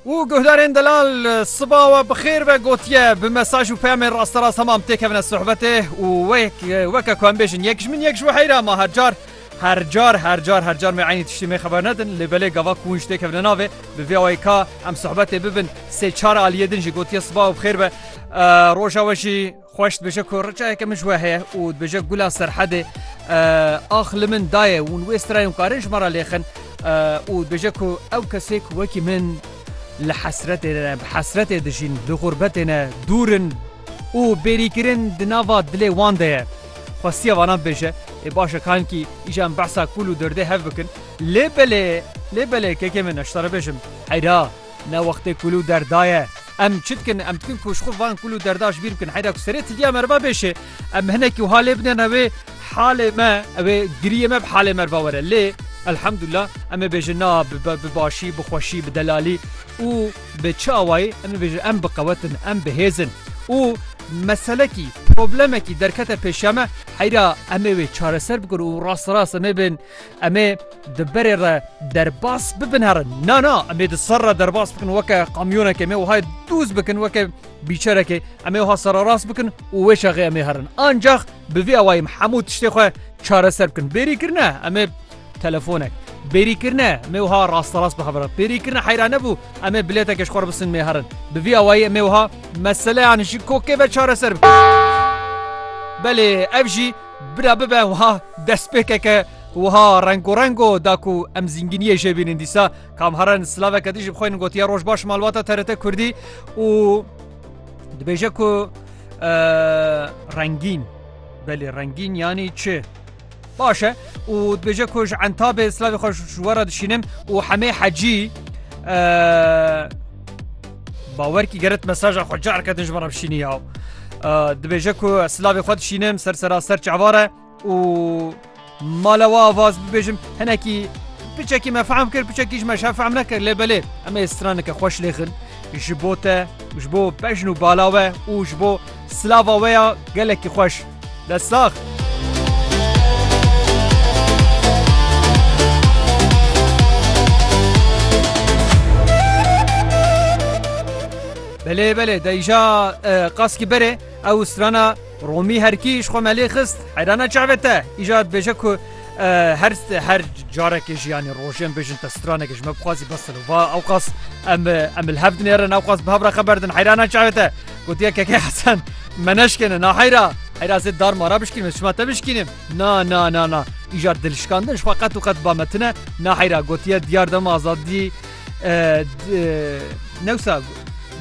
û guhdarên delal siba we bi xêr be gotiye bi mesaj û peyamên rasterast hemam têkevine sohbetê û weke ku em bêjin yek ji min yek ji we heyra ma her car her car her car her car me eynî tiştî me xeber nedin lê belê gava ku winj têkevine navê bi vê awayê ka em sohbetê bibin sê çar aliyê din jî gotiye siba û bi xêr be roja we jî Xweş dibêje ku riçayeke min ji we heye û dibêje gula Serhedê ax li min daye û wê strayon karin ji me re lêxin û dibêje ku ew kesê ku wekî min li hesretê ne bi hesretê dijîn li xurbetê ne dûr in û bêrîkirin di nava dilê wan de ye. Xwestiye vanan bibêje, ê baş e kankî îja em behsa kûl û derdê hev bikin. Lê belê, lê belê kekê min ez ji te re bêjim heyra. Ne wextê kul û derda ye. Em çi dikin? Em dikin ku ji xwe van kul û derda ji bîr bikin. Heyda ku serê tilîya meriva bêşê, em hinekî wiha lê bidin re wê halê me, wê giriyê me bi halê meriva were. Lê Elhamdullah em ê bêjin na bi başî, bi xweşî, bi delalî û bi çi awayî em ê bêjin em biqewet in, em bi hêz in û meselekî, problemekî derkete pêşiya me heyda em ê wê çareser bikin û rasterast em ê bên. Em ê di berê re derbas bibin herin. Na na em ê di ser re derbas bikin weke kamyonekê em ê wahayê dûz bikin weke bîçerekê em ê wiha sererast bikin û wê şexê em ê herin. Ancax bi vî awayî em hemû tiştê xwe çareser bikin. Bêrî kirine em ê telefonek. Bêrî kirine em ê wiha rasterast bihevrin. Bêrî kirine heyra nebû em ê bilêtekê ji xwe re bisin mê herin. Bi vî awayî em ê wiha meseleyan ji kokê ve çareser bikin. Belê ev jî Bira bibe wiha destpêkeke wiha rengorengo da ku em zînginiyê jê bînin dîsa kamharan silaveke din ji bi xwe gotiye roj baş malbata TRT Kurdî û dibêje ku rengîn belê rengîn yanî çi baş e û dibêje ku ji entabê silavê xwe ji we re dişînim û hemê hecî Bawerkî geret mesaja xwe careke din ji me re bişînî ya. Dibêje ku ez silavê xwe dişînim ser seraser çavare û mala we avaz bibêjim hinekî piçekî me fehm kir piçekî ji me şe fehm nekir lê belê em ê straneke xweş lêxin ji bo te ji bo bejn û bala we û ji bo silava we ya gelekî xweş. Dest sax. Belê belê deyja qaskî berê ew strana Romî herkî ji xwe melê xist heyrana çavê te îja dibêje ku her her carekê jiyanî rojên bêjin te stranekê ji me bixwazî bes va ew qas em em li hev dinêrin ew qas bi hev re xeber din heyrana çavê te Gotiye Keke Hesen me neşkêne na heyra heyra zê dar mara bişkînim ez şima te bişkînim na na na na îjar dilşkandin ji xwe qet û qet ba me tune na heyra gotiye diyar dema azadî newsa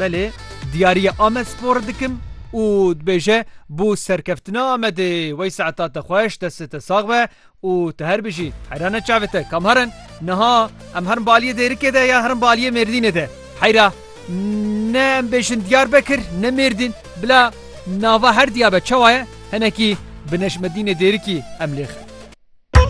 belê diyariye Amed spor dikim û dibêje bû serkeftina Amedê wey saeta te xweş destê te sax be Û tu her bijî. Heyra ne çavê te kam herin? Niha em herin baliyê Dêrikê de ya herin baliyê Mêrdînê de? Heyra, Ne em bêjin Diyarbekir ne Mêrdîn. Bila nava her diya be çawa ye? Hinekî bi Nejmedînê Dêrikî em lê xin.